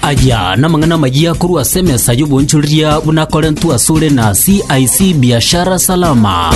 Aya namang'ana amayia korwa ase emesa y'obonchoreria buna akorentwe asore na CIC Biashara Salama.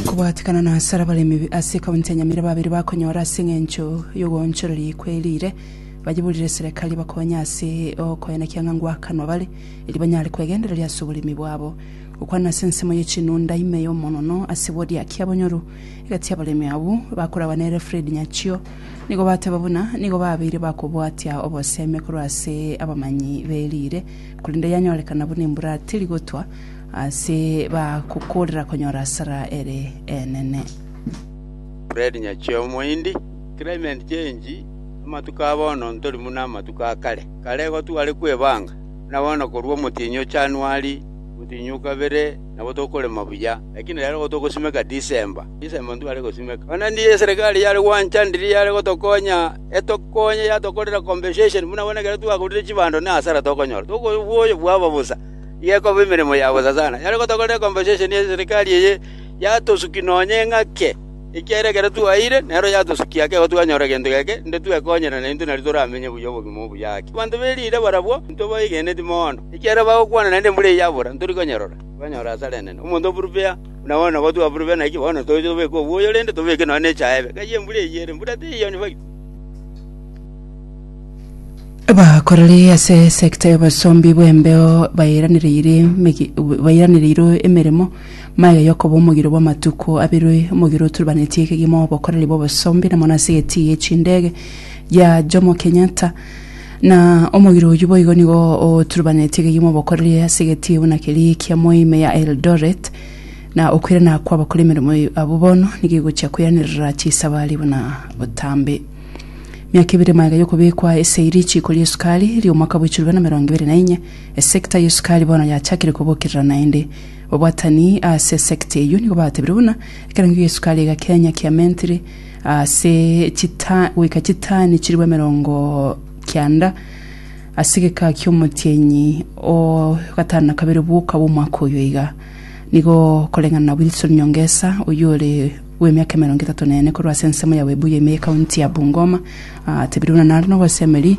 kobwatikana na asara abaremi ase kaunti ya Nyamira babere bakonyora ase eng'encho y'ogoonchoreria kwe riire bayiburire serekari bakonye ase okoenekia ng'a ngwakanwa bare eri banyare kwegendereria ase oboremi bwabo Gokwana ase ensemo ye chinunda ime y'omonono ase bodiaki abonyoru, egati abaremi abwo bakoragwa nere Fred Nyachio nigo bateba buna nigo babeire bakobwatia obosemi korwa ase abamanyi be riire korende yanyorekana buna embura teri gotwa ase bagokorera konyora asara ere enene. Fred Nyachio omoindi. Climate change, amatuko a bono ntori buna amatuko a kare. Kare igo tware kwebanga, buna bono korwa omotienyi o January, Gotinyia o kabere nabo tokorema buya, lakini rero igo togosimeka Desemba, Desemba intwe tware gosimeka. Onye naende eserekari yare gwanchanirie yare gotokonya, etokonye yatokorera compensation buna bono ekero twagurire chibando ne hasara tokonyora, tokoigwa oboyo bwabo bosa, iga ekoba emeremo ya bosa sana. Yare gotokorera compensation eserekari eye, yatosuki nonya eng'ake. Ekiagera ekero twaeire, nero yatosukia ake igo twanyora egento geke, inde twekonyerane intwe nario toramenye buya obogima obuya ake. Abanto be riire barabwo intwe baigeneti mono, ekiagera bagokwana naende embura eye yabora, ntori konyerora. Twanyora asare enene omonto oburupea buna one, nabo twaburupea naki bono toche tobeke obwoyo, rende tobeke nonya nechaebe, ng'ai embura eyio ere? Embura teiyo onye baitu. Abakoreri ase esegita y'obosombi bw'embeo bairanereiri emegi- bairanereirwe emeremo Magega y'okoba omogiro bw'amatuko abere omogiro oturubanetie kegima obokoreri bw'obosombi na mono ase egetii ye chindege gia Jomo Kenyatta. Na omogiro oyio boigo nigo oturubanetie kegima obokoreri ase egetii buna keria kia Moime ya Eldoret na okoirana kwa abakora emeremo abwo bono nigo egochia koiranerera chisabari buna botambe. Miaka ebere magega y'okobekwa ase richiiko ri'esukari ri'omwaka bw'echirwe na emerongo ebere na enye, esecta y'esukari bono yachakire kobokerera naende Obwatani ase sekta eyio nigo batebirie buna ekerango gia esukari egakenya kia mentri ase chita goika chitani chiribu emerongo kianda ase egeka kia omotienyi o gatano na kabere bwoka bw'omwaka oyo iga. Nigo koreng'ana na Wilson Nyongesa oyio ore bw'emiaka emerongo etato na ene korwa ase ensemo ya Webuye ime ye county ya Bungoma atebirie buna nare nogosemeri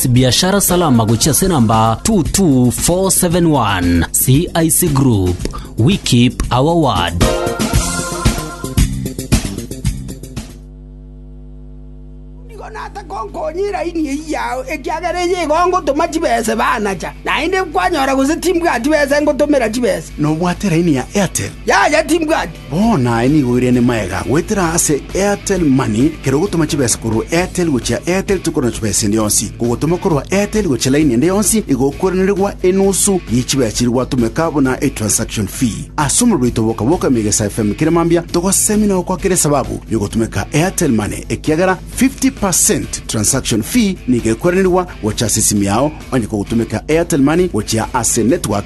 Biashara Salama gochia ase namba 22471 CIC Group we keep our word. nigo nase konkonyia eraini eyio yao ekiagera eyio igo ngotoma chibese banacha naende kwanyora gose timbwati bese ngotomera chibese nobwate raini ya Airtel. yaya timbwati Bono aye nigo oirene magega goetera ase Airtel Money, kera ogotoma chibesa korwa Airtel gochia Airtel tokorwa na chibesa ende yonsi. Kogotoma korwa Airtel gochia laini ende yonsi igo okoiranerigwa enusu ye chibesa chiria gwatomeka buna etransaction fee. Ase omorero oito bwoka-bwoka Emegesa FM kera mambia togosemi na gokoa kera esababu yogotomeka Airtel Money ekiagera 50 per cent transaction fee nigo ekoiranerigwa gocha ase esimi yao onye kogotomeka Airtel Money gochia ase network